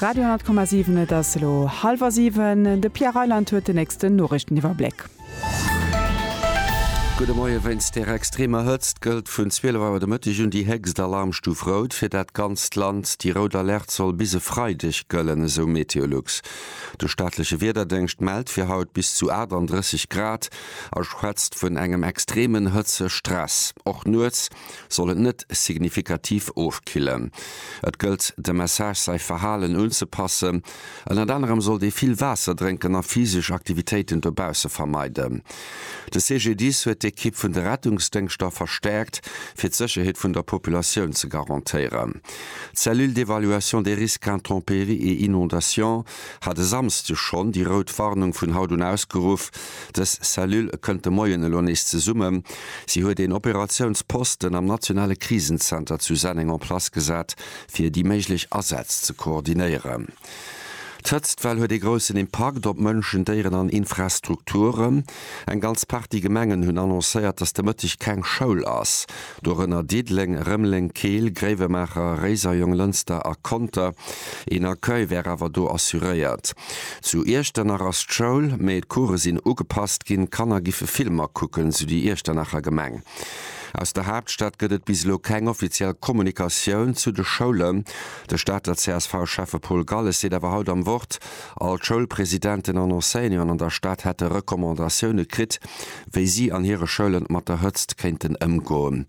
Radio 10,7 Et ass elo hallwer siwen. De Pierre Reyland huet den nächsten Noriichteniwwerbléck. Gudde Moie, Wéinst der extremer Hëtzt gëllt vun 12 Auer de Mëtteg un déi héchst Alarmstuf rout fir dat ganzt Land. Déi rout Alerte soll bis e Freideg gëllen, esou Meteolux. De staatleche Wiederdéngscht mellt fir haut bis zu 38 Grad a schwätzt vun engem extremen Hëtzestress. Och nuets soll et net signifikativ ofkillen. Et gëllt dem Message säi Verhalen unzepassen. Ënnert anerem sollt ee vill Waasser drénken a physesch Aktivitéiten dobausse vermeiden. De CGDIS huet d'Ekipp vun de Rettungsdéngschter verstäerkt, fir d'Sécherheet vun der Populatioun ze garantéieren. D'Cellule d'évaluation des risques intempéries et inondations hat e Samsde schonn déi rout Warnung vun haut un ausgeruff. Dës Cellule kënnt de Moien elo nees zesummen. Si huet een Operatiounsposten am nationale Krisenzenter zu Senneng en place gesat, fir déi méiglech Asätz ze koordinéieren. D'Hëtztwell huet ee groussen Impakt op Mënschen, Déieren an Infrastrukturen. Eng ganz Partie Gemengen hunn annoncéiert, datt de Mëtteg keng Schoul ass. dorënner Diddeleng, Rëmeleng, Keel, Gréiwemaacher, Réiser, Jonglënster a Conter. Een Accueil wär awer do assuréiert. Zu Iechternnach ass d'Schoul, mee d'Coure sinn ugepasst ginn, d'Kanner giffe Filmer kucken, sou déi Iechternacher Gemeng. Aus der Haaptstad gëtt et bis elo keng offiziell Kommunikatioun zu de Schoulen. De Stater CSV-Schäffe Paul Galles seet awer haut am Wort, all d'Schoulpresidenten an Enseignanten an der Stad hätte Recommandatioune kritt, wéi si an hire Schoulen mat der Hëtzt kéinten ëmgoen.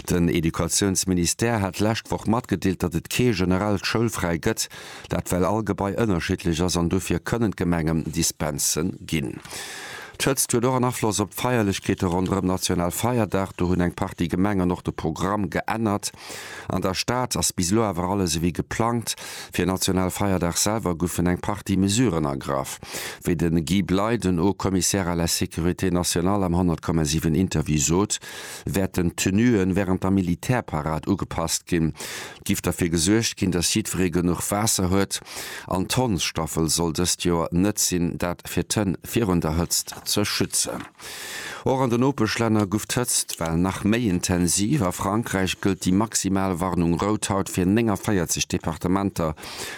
Den Educatiounsministère hat d'lescht Woch matgedeelt, datt et kee generellt Schoulfräi gëtt, dat well all Gebai ënnerschiddlech ass an dofir kënnen d'Gemengen Dispense ginn. D'Hëtzt huet och en Afloss op d'Feierlechkeete ronderëm Nationalfeierdag. Do hunn eng Partie Gemengen och de Programm geännert. An der Stad ass bis elo awer alles ewéi geplangt. Fir en national Feierdag selwer goufen eng Partie Mesuren ergraff, wéi de Guy Bley, den Haut-Commissaire à la sécurité nationale am 100,7 Interview sot, wäerten d'Tenuen wärend der Militärparad ugepasst ginn. Et giff derfir gesuergt ginn, datt jiddweree genuch Waasser huet. An d'Hondsstaffel soll dëst Joer net sinn, dat fir d'Hënn virun der Hëtzt ze schützen. Och an de Nopeschlänner guff d'Hëtzt well nach méi intensiv. A Frankräich gëllt déi maximal Warnung rout haut fir 49 Departementer,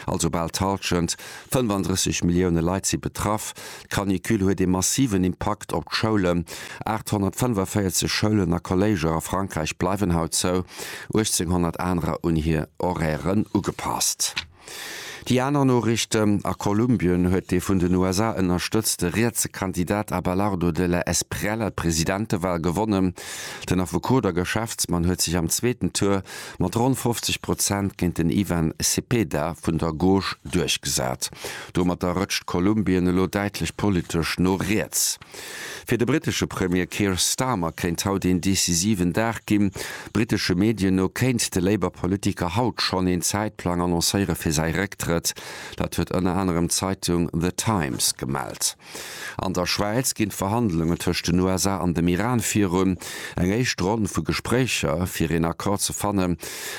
also bal d'Halschent, 35 Millioune Leit si betraff. D'Canicule huet ee massiven Impakt op d'Schoulen, 845 Schoulen a Kolléiger a Frankräich bleiwen haut zou, 1800 anerer un hir Horairen ugepasst. Déi aner Noriichten, A Kolumbien huet dee vun den USA ënnerstëtzte rietse Kandidat Abelardo de la Espriella d'Presidentewahl gewonnen. Den Affekot a Geschäftsmann huet sech am zweeten Tour mat ronn 50 Prozent géint den Ivan Cepeda vun der Gauche duerchgesat. Domatter rëtscht Kolumbien elo däitlech politesch no riets. Fir de brittesche Premier Keir Starmer kéint haut een decisiven Dag ginn. Brittesche Medien no kéint de Labour-Politiker haut schonn een Zäitplang annoncéiere fir säi Récktrëtt. Dat huet ënner anerem d'Zeitung The Times gemellt. An der Schwäiz ginn d'Verhandlungen tëscht den USA an dem Iran virun. Eng éischt Ronn vu Gespréicher fir een Accord ze fanne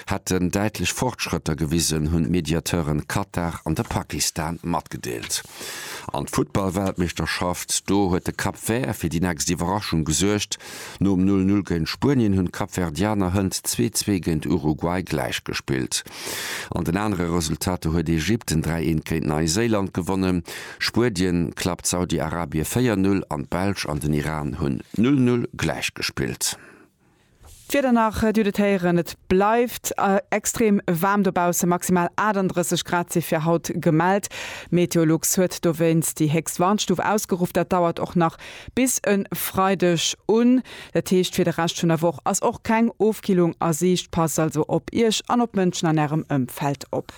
hätten däitlech Fortschrëtter gewisen, hunn d'Mediateuren Katar an de Pakistan matgedeelt. An d'Futtballweltmeeschterschaft, do huet de Cap Vert fir déi nächst Iwwerraschung gesuergt. Nom 'Null Null' géint Spuenien hunn d'Kapverdianer hënt 'Zwee Zwee' géint Uruguay gläich gespillt. An den anere Resultater huet Ägypten 3 Eent géint Neiséiland gewonnen, Spuedien klappt Saudi-Arabie 4 Null an d'Belsch an den Iran hunn 'Null Null' gläich gespillt. D'Wieder der nach, Dir hutt et héieren, et bleift extrem waarm dobaussen, maximal 38 Grad si fir haut gemellt. Meteolux huet dowéinst déi héchst Warnstuf ausgeruff. Dat dauert och nach bis e Freideg un. Dat heescht, fir de Rescht vun der Woch ass och keng Ofkillung a Siicht. Passt also op Iech an op d'Mënschen an Ärem Ëmfeld op.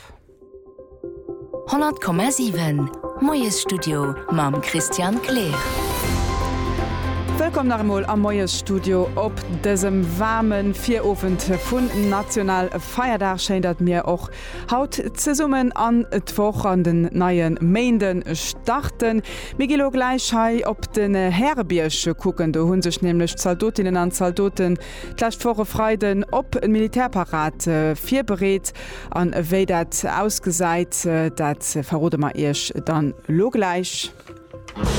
100,7 Moiesstudio mam Christian Kleer. Wëllkomm nach emol am Moiesstudio op dësem waarme Virowend vun National Feierdag. Schéin datt mir och haut zesummen an d'Woch an den neie Méinde starten. Mir gi lo gläich hei op den Härebierg kucken, do hu sech nämlech Zaldotinnen an Zaldoten D'lescht Woch e Freiden op d'Militärparad virbereet an wéi dat ausgesäit, dat verrode mer Iech dann elo gläich.